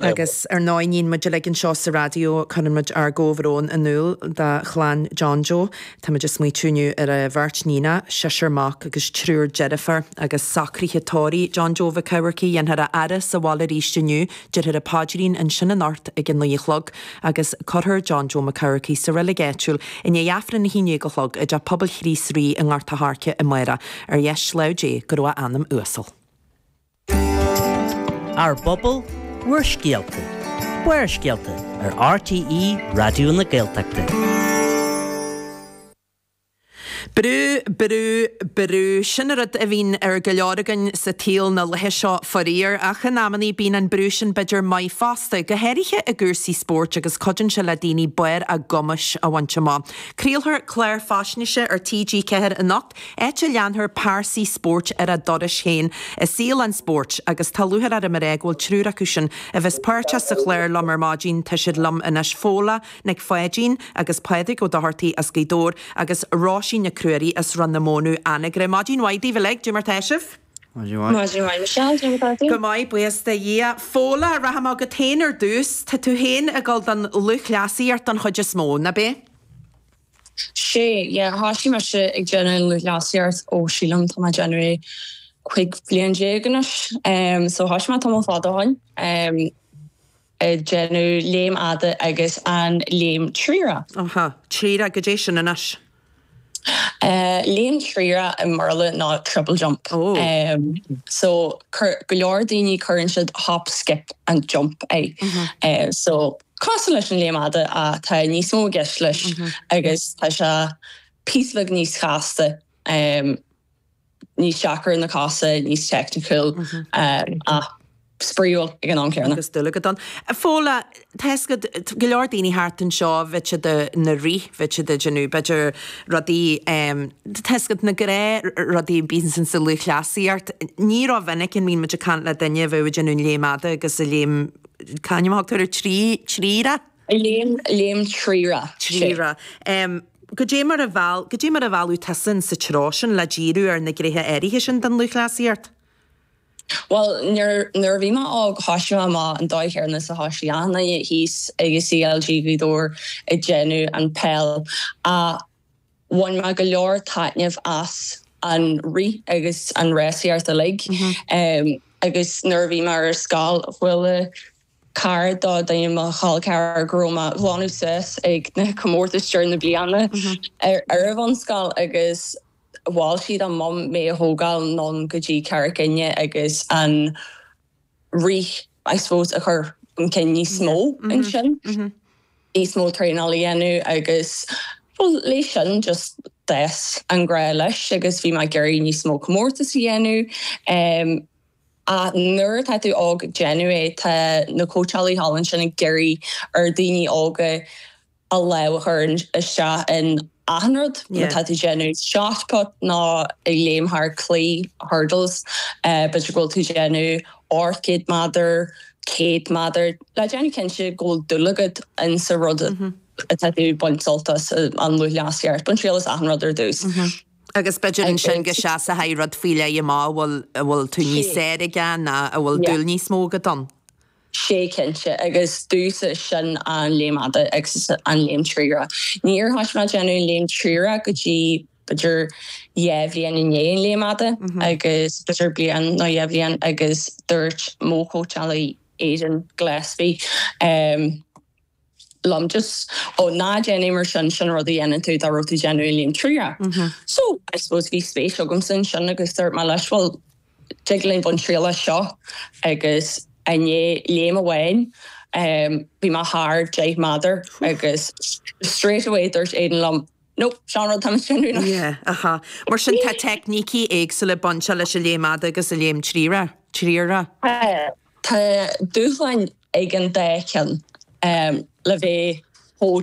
Agus ar ndóigh níonn muid uilig anseo sa raidió, cuireann muid ár gcomhbhrón in iúl do chlann John Joe. Táimid ag smaoitiú inniu ar a bheirt níon, seisear mac agus triúr deirfiúr. Agus socruithe tórraimh, John Joe Mhic Eamharcaigh, dhéanfar a fhaire sa bhaile arís inniu, deirfear an paidrín ansin anocht ag a naoi a chlog, agus cuirfear John Joe Mac Eamharcaigh sa reilig áitiúil i ndiaidh Aifreann a haon dhéag a chlog i dTeach Pobail Chríost Rí i nGort a' Choirce amárach. Ar dheis láimh Dé go raibh a anam uasal. Ár bPobal, Bhur Scéalta, Barrscéalta ar RTÉ Raidió na Gaeltachta. Brú, brú, brú. Sin an rud a bhíonn ar go leor againn sa tsaol na laetha seo, faraor. Ach in amannaí bíonn an brú sin b'fhéidir maith fosta, go háirithe i gcúrsaí spóirt agus cuidíonn sé le daoine barr a gcumais a bhaint amach. Craolfar clár faisnéise ar TG4 anocht. áit a leanfar pearsaí spóirt ar a dturais féin i saol an spóirt agus tá lúchair orm a rá go bhfuil triúr acu sin a bheas páirteach sa chlár liom ar maidin, tá siad liom anois, Fódhla Nic Pháidín agus Pádraig Ó Dochartaigh as Gaoth Dobhair agus Róisín Nic Ruairí as Rann na Mónadh, Anagaire. Maidin mhaith daoibh uilig, goidé mar tá sibh! Maidin mhaith. Maidin mhaith Michelle, goidé mar tá tú? Go maith, buíochas do Dhia. Fódhla, rachaidh mé chugat féin ar dtús, tá tú féin ag dul don lúthchleasaíocht don chuid is mó, nach b'é? Sé, yeah, thosaigh mise ag déanamh lúthchleasaíocht ó sílim, tá mé ag déanamh é cuig bhlian déag anois, em, so thosaigh mé tamall fada ó shoin, em, ag déanamh léim fhada agus an léim thriarach. Aha, thriarach, goidé sin anois? Eh, léim thriarach i mBéarla ná triple jump. Oh. Em, so cur, go leor daoine cuireann siad hop, skip and jump air. Eh, so. cosúil leis an léim fhada ach tá níos mó i gceist leis agus tá sé píosa beag níos casta, níos deacra ar na cosa, níos teicniciúil ach spraíúil ag an am céanna. Agus dúil agat ann. Fódhla, tá fhios agat, tá go leor daoine thart anseo, bheadh siad ina rith, bheadh siad ag déanamh b'fhéidir rudaí, tá fhios agat, na gnáthrudaí a bíos insa lúthchleasaíocht. Ní ró-mhinic a mbíonn muid ag caint le duine a bheadh ag déanamh an léim fhada agus an léim. C'ainm a thugtar air, tri, triarach? Léim, léim thriarach, tri. Triarach. Goidé mar a mheall, goidé mar a mealladh tusa sa treo sin le díriú ar na gnéithe áirithe sin den lúthchleasaíocht? Bhuel, nuair, nuair a bhí mé óg, thosaigh mé amach an dóigh chéanna is a thosaigh achan duine thíos ag an CLG Ghaoth Dobhair ag déanamh an peil. Ach Bhain mé go leor taitnimh as an rith agus an rásaíocht uilig agus nuair a bhí mé ar scoil chuala cara do duine mo chol ceathrar go raibh mé ag glanadh suas ag na comórtais deireadh na bliana ar an bhunscoil agus mhol siad do mum mé a thógáil anonn go dtí Carraig Fhinne agus an rith I suppose a chur chun cinn níos mó ansin, níos mó traenáil a dhéanamh agus bhuel leis sin just d'fhás an grá leis agus bhí mé ag iarraidh níos mó comórtas a dhéanamh em ach nuair atá tú óg déanamh é tá na cóitseálaithe thall ansin ag iarraidh ar dhaoine óga a lámh a chur isteach in achan rud, má tá tú ag déanamh shotput nó ag léim thar claí, hurdles, b'fhéidir go bhfuil tú ag déanamh dhá chéad méadar, céad méadar, le déanamh cinnte go bhfuil dúil agat in sa rud atá tú ag baint sult as an lúthchleasaíocht. Bain triail as achan rud ar dtús. Agus b'fhéidir ansin go seasfaidh rud faoi leith amach a bhfuil tú níos fearr aige nó a bhfuil dúil níos mó agat ann. sé cinnte, agus domhsa sin an léim fhada agus an léim triarach. Níor thoisigh mé ag déanamh léim triarach go dtí b'fhéidir dhá bhliain i ndiaidh an léim fhada, agus b'fhéidir bliain nó dhá bhliain, agus dúirt mo chóitseálaí, Aidan Gillespie, liom just, oh ná déan é mar sin, sin an rud a dhéanann tú dá raibh tú déanamh an léim triarach. So, I suppose bhí spéis agamsa ansin agus dúirt mé leis bhuel, tig linn baint triail as seo agus i ndiaidh léim amháin em bhí mé thar deich méadar agus straight away dúirt Aidan liom nope, seo an rud atá tú ag déanamh anois. Yeah, aha. Mar sin tá teicnící éagsúla bainteach leis an léim fhada agus an léim triarach. Tá dúshláin ag an dá cheann le bheith chomh